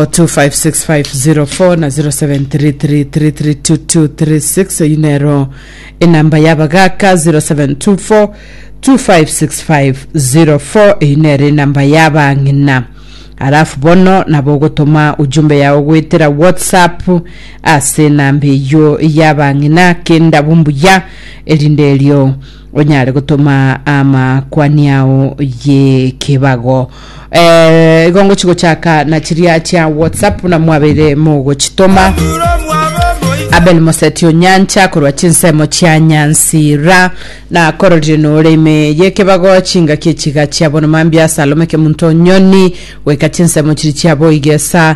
0724256504 na 0733332236 eyi nero enamba yabagaka 0724256504 eyi nero enamba yabang'ina alafu bono nabo ogotoma ujumbe yao goetera whatsapp ase enamba eyo yabang'ina kenda bumbuya erinde erio onyare gotoma amakwani ao yekebago eh, igo ngochigochaka na chiria chia whatsapp buna mwabeire mogochitoma abel moseti onyancha korwa chinsemo chia nyansira na kororire nore ime yekebago chingaki echiga chia bono mambia salome kemunto nyoni goika chinsemo chiri chia boigesa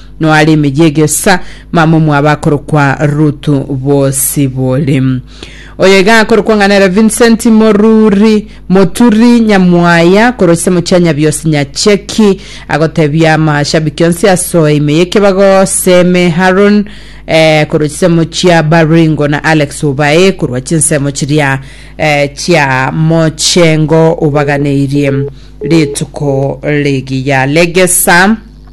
Noare emeyie egesa, mama omwabo akorokwa Rutu Bosibore. Oyo iga akorokwa ng'a nere Vincent Moruri Moturi Nyamwaya koroisia mochia Nyabiosi Nyacheki agotebia amashabiki onsi asoe ime y'ekebago Seme Haron eh, koroisia mochia Baringo na Alex Obae korwa chinsemo chiria eh, chia mochengo obaganeirie rituko rigiya regesa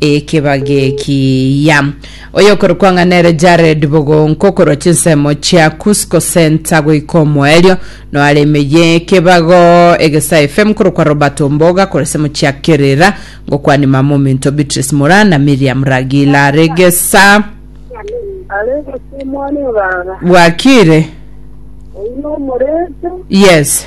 Ekebagekiya. Oyokorokwa ng'a nere Jared Bogonko korwa chinsemo chia Cusco Center goika omoerio noare ime y'ekebago Egesa FM korokwa Robert Omboga korwa ensemo chia Kerira ngokwania mama ominto Beatrice Mura na Miriam Ragila Regesa Aregesa omwana o baba. bwakire Oyio omorete. yes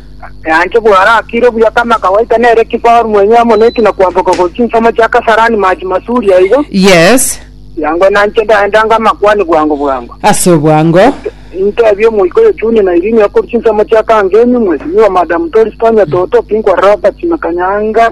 Eanche bw'aro akiire buya kame, akagoita nere Kibahor mwenye amo neki na kwamboka gochia chinsemo chia Kasarani mache masuri aiga. Yes. Yango nanche ndaendange amakwani bwango bwango. Ase obwango. Intebie omoika oyo Chuni na Irini okorwa chinsemo chia Kangemi, Mheshimiwa Madam Doris Tonya Toto, Pinkwar Robert na Kanyanga.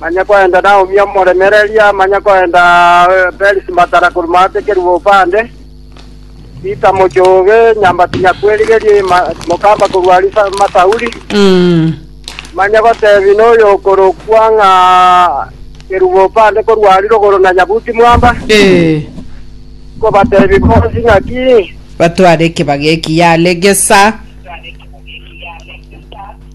Manye koenda Naomi omoremereria amanye koenda Perisi matara korwa maatekerigwe bopande. Rita mochie obe nyambati nyakwerigerie mokamba korwa aria Sauli, manye gotebi noyokorokwa ng'a kerwa bopande korwa aria rogoro na nyabuti mwamba, nkobatebi bonsi naki. Batware ekebaga eki yare gesa.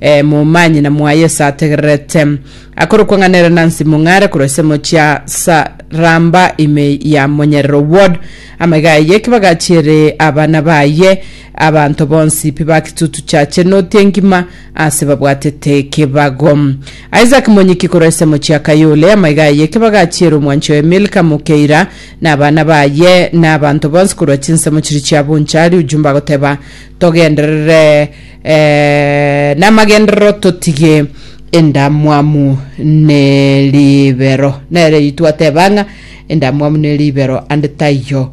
ee, momanye na mwaye ase ategererete. Akorokwa ng'a nere Nancy Mong'are korwa ensemo chia Saramba ime ya Monyerero Ward. Amaiga aye ekebaga achiere abana baye, abanto bonsi pi ba Kitutu Church enoti engima ase babwatete ekebago. Isaac Monyiki korwa ensemo chia Kayole, amaiga aye ekebaga achiere omwanchi oye Milka Mokeira na abana baye na abanto bonsi korwa chinsemo chiri chia Bonchari. Ujumbe agoteba togenderere Eh, namagenderero totige endamwamu ne ribero nere itwateba ng'a endamwamu ne ribero ande taiyo